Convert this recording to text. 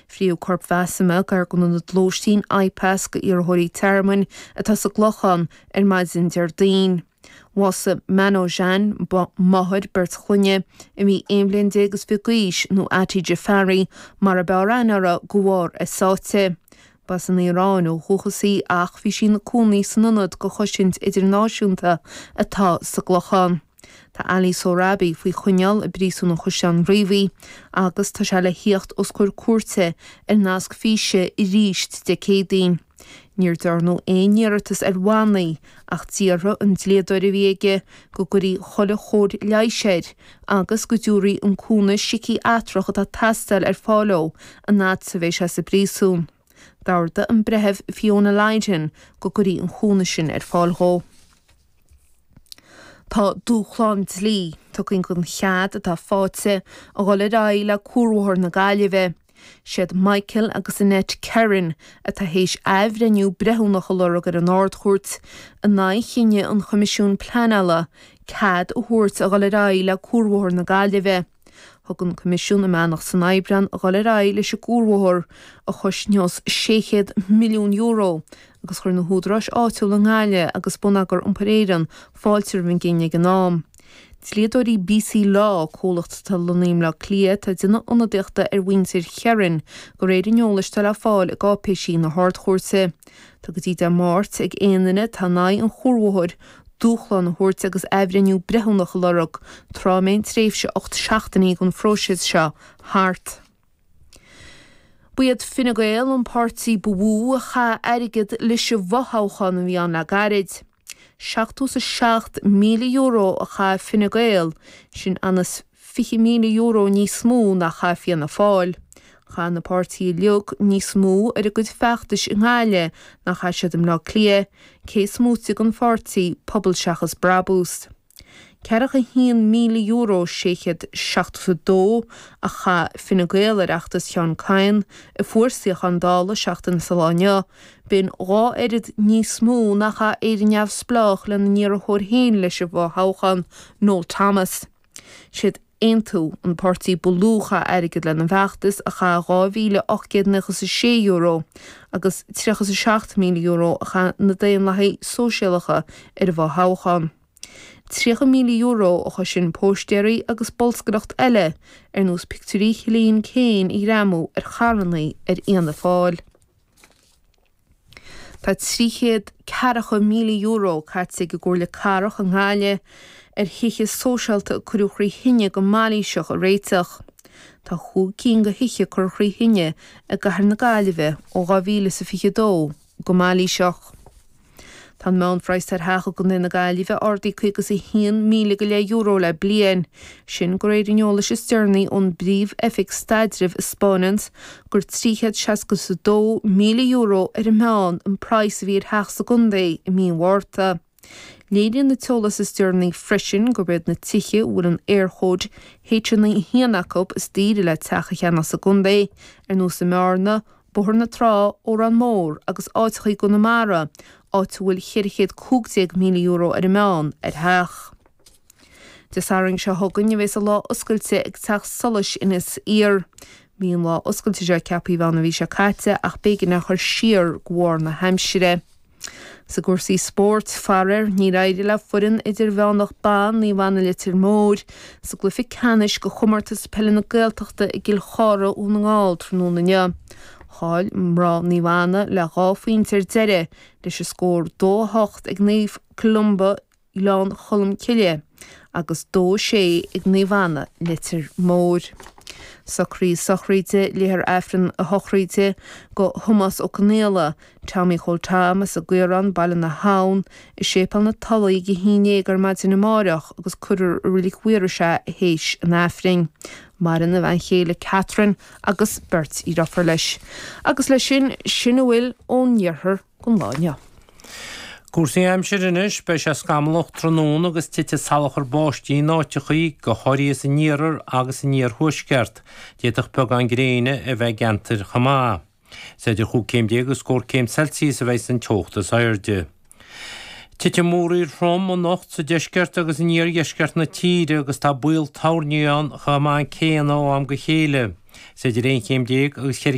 Frítheadh coirp Masoumeh gar don ionad lóistín IPAS d'iarrthóirí tearmainn atá sa gClochán ar maidin Déardaoin. Bhásaigh Manojan, máthair beirt chlainne, a bhí aon bhliain déag is fiche d'aois, nó Ati Jaffari mar ab fhearr aithne uirthi, de bharr a sáite. Ba as an Iaráin ó dhúchas í ach bhí sí ina cónaí san ionad do chosaint idirnáisiúnta atá sa gClochán. Tá Ali Sohrabi faoi choinneáil i bPríosún an Chaisleáin Riabhaigh agus tá sé le thíocht os comhair cúirte ar nasc físe aríst Dé Céadaoin. Níor dearnadh aon iarratas ar bhannaí ach d'iarr an dlíodóir a bhí aige go gcuirfí chuile chóir leighis air agus go dtabharfaí an cúnamh siciatrach atá ag teastáil ar fáil dó an fhad a bheidh sé sa bpríosún. D'ordaigh an Breitheamh Fiona Lydon go gcuirfí an cúnamh sin ar fáil dhó. Tá dúshlán dlí tugtha don chead atá fáighte a dhul ar aghaidh le Cuarbhóthar na Gaillimhe. Siad Michael agus Annette Kerin atá théis athbhreithniú breithiúnach a lorg ar an Ard-Chúirt in aghaidh chinneadh an Choimisiúin Pleanála cead a thabhairt a dhul ar aghaidh le Cuarbhóthar na Gaillimhe. Thug an Coimisiún a mbeannacht san Aibreán a dhul ar aghaidh leis an gcuarbhóthar, a chosnós €600 milliún, agus chuir na húdaráis áitiúla i nGaillimh agus Bonneagar Iompair Éireann fáilte roimh an gcinneadh ag an am. Dlíodóirí BC Law, comhlacht atá lonnaithe i mBleá Cliath, atá ag déanamh ionadaíochta ar mhuintir Kerin, de réir an eolais atá le fáil i gcáipéisí na hArd-Chúirte. Tá go dtí Dé Máirt ag aon duine atá in aghaidh an chuarbhóthair dúshlán a thabhairt agus athbhreithniú breithiúnach a lorg tráth a mbeidh an tréimhse ocht seachtainí den phróiseas seo thart. Ba iad Fine Gael an páirtí ba mhó a chaith airgead leis an bhfothoghchán a bhí ann le gairid. €77,000 a chaith Fine Gael, sin ionann's €20,000 níos mó ná chaith Fianna Fáil. Chaith na páirtithe uilig níos mó ar a gcuid feachtais i nGaillimh ná chaith siad i mBleá Cliath, cé is móite den pháirtí Pobal Seachas Brabús. €41,672 a chaith Fine Gael ar fheachtas Sheán Kyne, a fuair suíochán Dála seachtain sa lá inniu, b'in dhá oiread níos mó ná a chaith Éire Neamhspleách lena n-iarrthóir féin leis an bhfothoghchán, Noel Thomas. Siad. Aontú, an páirtí ba lú a chaith airgead lena bhfeachtas, a chaith €2,896 agus €37,000 a chaith na Daonlathaigh Sóisialacha ar an bhfothoghchán. €30,000 a chosain póistéirí agus bolscaireacht eile ar nós pictiúirí Chillian Keane a ghreamú ar charrannaí ar Fhianna Fáil. Tá trí chéad ceathracha míle euro caite ag an gComhairle Cathrach i nGaillimh ar thithe sóisialta a cuireadh thrí thine go mailíseach a réiteach. Tá chúig cinn de thithe curtha thrí thine i gCathair na Gaillimhe ó 2022 go mailíseach. Tá an meánphraghas ar theach i gContae na Gaillimhe ardaithe 51,000 go leith euro le bliain, sin de réir an eolais is deireanaí ón bPríomh-Oifig Staidrimh a 'spáineanns gur €362,000 ar an meán an praghas a bhí ar theach sa gcontae i mí an Mhárta. Léiríonn an t-eolas is deireanaí freisin gurb iad na tithe a bhfuil an Éirchóid H91 acu is daoire le teach a cheannach sa gcontae, ar nós i mBearna, Bóthar na Trá, Órán Mór agus áiteachaí i gConamara, áit a bhfuil €415,000, ar an meán, ar theach. Dé Sathairn seo chugainn a bheas an lá oscailte ag Teach Solais Inis Oírr. Bhí an lá oscailte seo ceaptha a bheith ann an mhí seo caite ach b'éigean é a chur siar de bharr na haimsire. I gcúrsaí spóirt, faraoir, níor éirigh le foireann idirmheánach ban Naomh Anna Leitir Móir sa gcluiche ceannais de Chomórtas Peile na Gaeltachta i gCill Chartha Dhún na nGall tráthnóna inniu. Chaill mná Naomh Anna le dhá phointe ar deireadh, leis an scór 2 8, ag Naomh Columba Gleann Cholm Cille, agus 2 6 ag Naomh Anna, Leitir Móir. Socruithe sochraide, léifear Aifreann na sochraide do Thomás Ó Conaola, Tommy Chóil Tom, as an gCaorán, Baile na hAbhann, i Séipéal na Tulaí ag a haon déag ar maidin amáireach agus cuirfear i Reilig Mhaorais é théis an Aifrinn. Maireann a bhean chéile Catherine agus beirt dheirfiúr leis. Agus leis sin, sin a bhfuil ón iarthar. don lá inniu. Cúrsaí aimsire anois, Beidh sé scamallach tráthnóna agus titfidh salachar báistí in áiteachaí, go háirithe san iarthar agus in iarthuaisceart. D'fhéadfadh beagán gréine a bheith i gceantair chomh maith. Is idir chúig chéim déag agus scór céim Celsius a bheas an teocht is airde. Titfidh múraíl throm anocht sa deisceart agus in iardheisceart na tíre agus tá baol toirní ann chomh maith céanna ó am go chéile. Is idir aon chéim déag agus cheithre